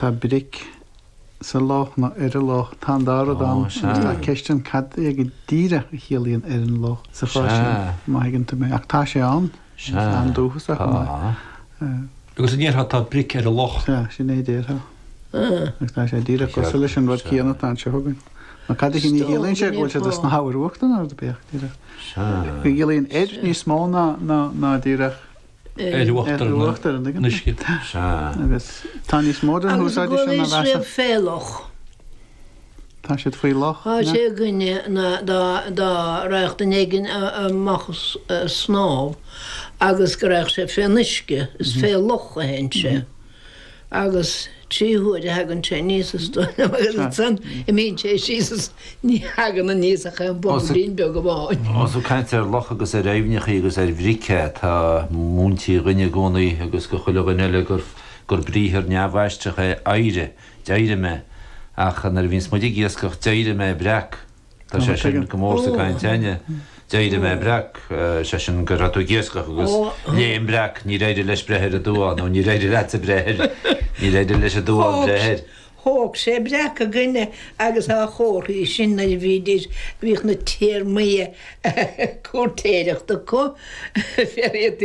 Tá bric sa loch nó ar an loch. Tá an dá rud ann agus tá ceist ann cad é go díreach a chiallaíonn 'ar an loch' sa chás sin, má thuigeann tú mé. Ach tá sé ann, is an-dúchasach chomh maith. Agus an ndéarfá 'tá bric ar an loch'? Sea, sin é a déarfá. Agus tá sé díreach cosúil leis an rud céanna atá anseo againn. Nó cad é sin a chiallaíonn sé, go bhfuil siad sna hábhair uachtair nó cad é? Go gciallaíonn 'ar' níos mó ná díreach. ar uachtar an uisce. Sea, agus tá níos mó den úsáid sin á mheas. Agus go bhfuil siad fé loch. Tá siad faoi loch. Tá sé againne ná dá raghadh duine éigin amach ag snámh agus go raghadh sé fén uisce, is fé loch a théann sé. Agus trí huaire a thagann sé aníos is dóigh liom, agus ansan imíonn sé síos is ní thagann aníos ach aon bhobailín beag amháin. Más ag caint ar locha agus ar aibhneachaí agus ar bhric atá múintí dhúinn i gcónaí agus do chuile dhuine eile gur briathar neamhaistreach é 'éirigh', d'éirigh mé, ach nuair a bhíonns muid ag iascach d'éirigh mé breac. Tá sé sin go mór sa gcaint a'ainne. D'éirigh mé breac, is é sin go raibh tú ag iascach agus léim breac, níor éirigh leis breith ar an duán, nó níor éirigh leatsa breith air, níor éirigh leis an duán breith air. Thóg sé breac againne agus á chomharthaí sin nuair a bhídís, bhíodh na téarmaí cúirtéireachta acu, féar iad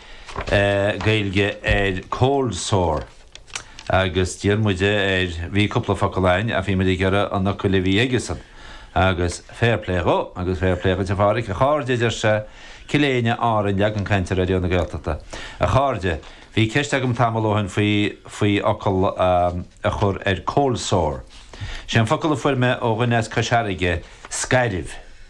Gaeilge ar cold sore agus d'iarr muid air, bhí cúpla focal a'ainn ach bhí muid ag iarraidh an fhocail a bhí aigesan agus fair play dhó agus fair play dhuit a Phádraic, a chairde a deir sé, Cill Éinne, Árainn, leagan cainte Raidió na Gaeltachta. A chairde, bhí ceist agam tamall ó shin faoi, faoi fhocal a, a chur ar cold sore. Sé an focal a fuair mé ó dhuine as Cois Fharraige, scairbh.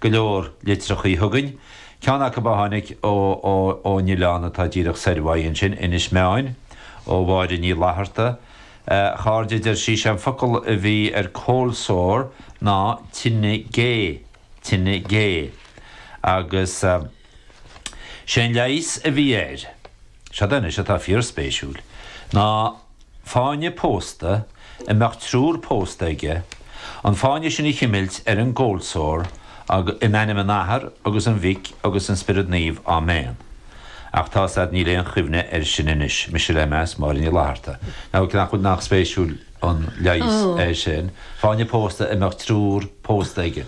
go leor litreachaí chugainn, ceann acub a tháinig ó, ó, ón oileán atá díreach soir uaidh ansin, Inis Meáin, ó Mháire Ní Fhlatharta. A chairde, a deir sí, sé an focal a bhí ar Cold Sore ná tine gé, tine gé. Agus. Sé an leigheas a bhí air, seod anois atá fíorspéisiúil, ná fáinne pósta a mbeadh triúr pósta aige, an fáinne sin a chimilt ar an gCold Sore agus In ainm an Athar agus an Mhic agus an Spiorad Naomh, Áiméan. Ach tá 's a'd níl aon chuimhne air sin anois, Mise le meas, Máire Ní Fhlatharta. Now nach bhfuil nach spéisiúil an leigheas é sin, fáinne pósta a mbeadh triúr pósta aige.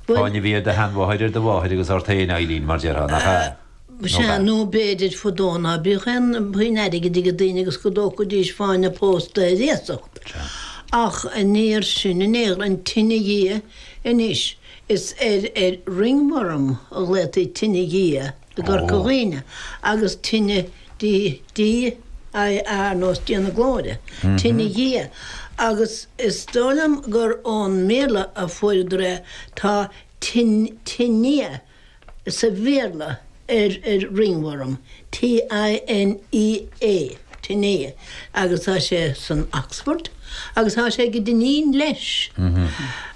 Fáinne a bhí ar do sheanmháthair ar do mháthair agus ort féin, Eileen, mar déarfá, nach ea? Nó Sea, ba. nó b'fhéidir fadó ná bíodh aon phuinn airgid ag daoine agus go dtógfaidís fáinne pósta ar iasacht. Ach aniar sin, aniar an tine dhia anois, is ar ar ringworm a ghlaoití tine dhia i gCorca Dhuibhne agus tine D DIA ar nós Dia na Glóire, Tine Dhia, agus is dóigh liom gur ón mBéarla a fuaireadar é, tá Tinea sa Bhéarla ar ring worm, T-i-n-e-a, Tinea. Agus tá sé san Oxford agus tá sé ag an Dinneen leis.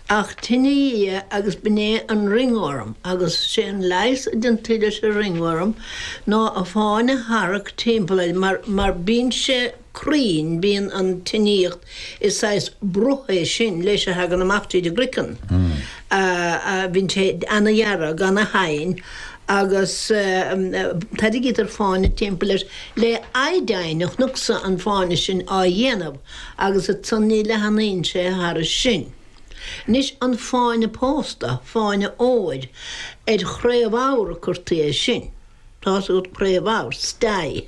Ach tine Dhia agus b'in é an ringworm agus sé an leigheas a deintí leis an ringworm ná fáinne a tharrac timpeall air mar, mar bíonn sé cruinn, bíonn an tinníocht, is saghas bruth é sin leis a thagann amach tríd an gcroiceann, bíonn sé ana-dhearg, ana-thinn. agus tairrigítear fáinne timpeall air le iodine a chonacsa an fáinne sin á dhéanamh agus ansan ní leathnaíonn sé thairis sin. Anois an fáinne pósta, fáinne óir, ar chraobhabhar a curtaí é sin. Tá's agat craobhabhar, stye.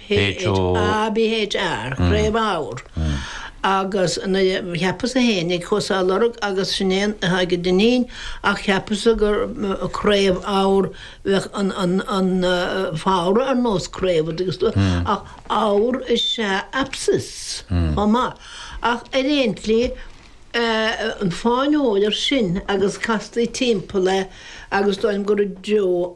HÓABHR, Craobhabhar. Agus cheapas-sa fhéinig, chuas á lorg agus sin é atá ag an Dinneen ach cheapas-sa gur craobh ábhar bheadh an fabhra ar nós craobh an dtuigeann tú ach ábhar is ea abscess chomh maith ach ar aon tslí an fáinne óir sin agus castaí timpeall é agus is dóigh liom gur i dtreo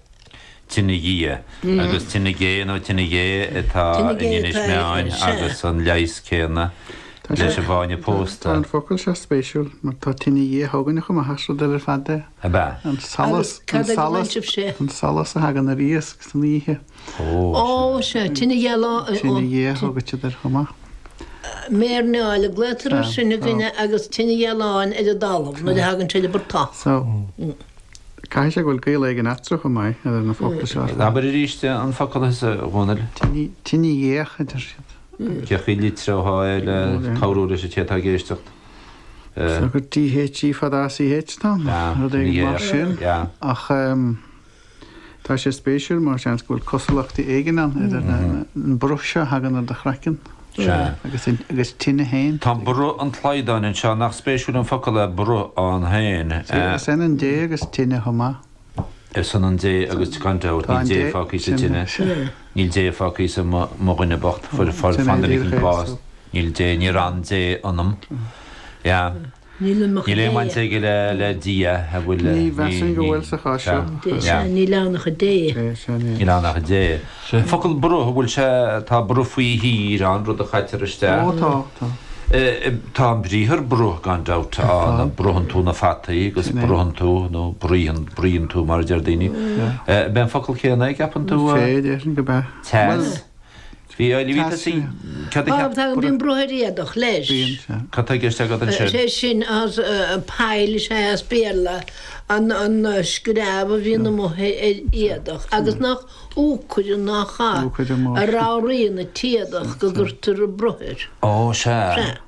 Tine Dhia, agus Tine Gé nó Tine Ghé atá in Inis Meáin agus an leigheas céanna leis an bhfáinne pósta. Tá an focal seo spéisiúil mar tá Tine Dhia a thugann siad chomh maith ar rud eile ar fad de. Ab ea? An solas, an solas a thagann ar iasc san oíche. Ó, sea, Tine ghealáin. Tine Dhia a thugann siad air chomh maith. Méarnáil a glaodhtar ar sin againne agus Tine ghealáin ar an dtalamh nuair a thagann sé le bur t-. Caithfidh sé go bhfuil gaol éigin eatarthu chomh maith idir na focla seo. Abair arís an focal thusa, a Dhomhnaill. Tine dhíach, a deir siad. Thiocfadh litrigh é le cabhrú leis an té atá ag éisteacht. Sea, gur dh í fada a ch ann, rud éigin mar sin. Ach tá sé spéisiúil mar seans go bhfuil cosúlachtaí éigin ann idir an bruth seo a thagann ar do chraiceann. Sea. Agus tine fhéin? Tá bruth an tslaghdáin anseo, nach spéisiúil an focal é bruth ann féin. Sea, is ionann dé agus tine chomh maith. Is ionann dé agus gan dabht, níl dé fágtha sa tine, níl dé fágtha sa mo dhuine bocht, fuair fána lig an bás, níl dé, níor fhan dé ionam. Yeah. Níl aon bhaint aige le Dia an bhfuil. Ní mheasaim go bhfuil sa chás seo. Dé, sea, níl ann ach Dé. Dé, sea, níl. Níl ann ach Dé. An focal bruth, an bhfuil sé, tá bruth faoi thír ann, rud a chaitear isteach? Ó, tá, tá. Tá an briathar bruth, gan dabht, ann, bruitheann tú na fataí agus bruitheann tú, nó bruíonn, bruíonn tú mar a deir daoine. Ab é an focal céanna é, an gceapann tú? Sé, déarfainn gurb é. Teas. Bíonn bruth ar éadach, leis. Cad tá i gceist agat ansin? Sé sin, pile is ea é as Béarla, an screamh a bhíonn amuigh ar éadach agus nach úcaire nach ea, a ramhraíonn an t-éadach go gcuirtear bruth air. Ó, sea.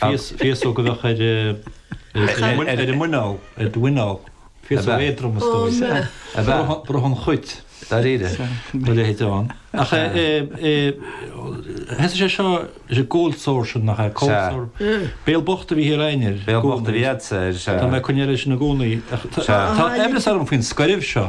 Féasóg a bheadh ar a muineál, ar do mhuineál. Féasóg éadrom is dóigh. Ó na. A bheadh. Bruth an chuit. Dáiríre? Mo leithéid ann. Ach eh, thosaigh sé seo, is é cold sore sin nach é? Cold sore. Béal bocht a bhí thiar a'inn air. Béal bocht a bhí a'dsa air. Tá mé ag cuimhneamh air sin i gcónaí. Tá aimhreas orm faoin scoirbh seo.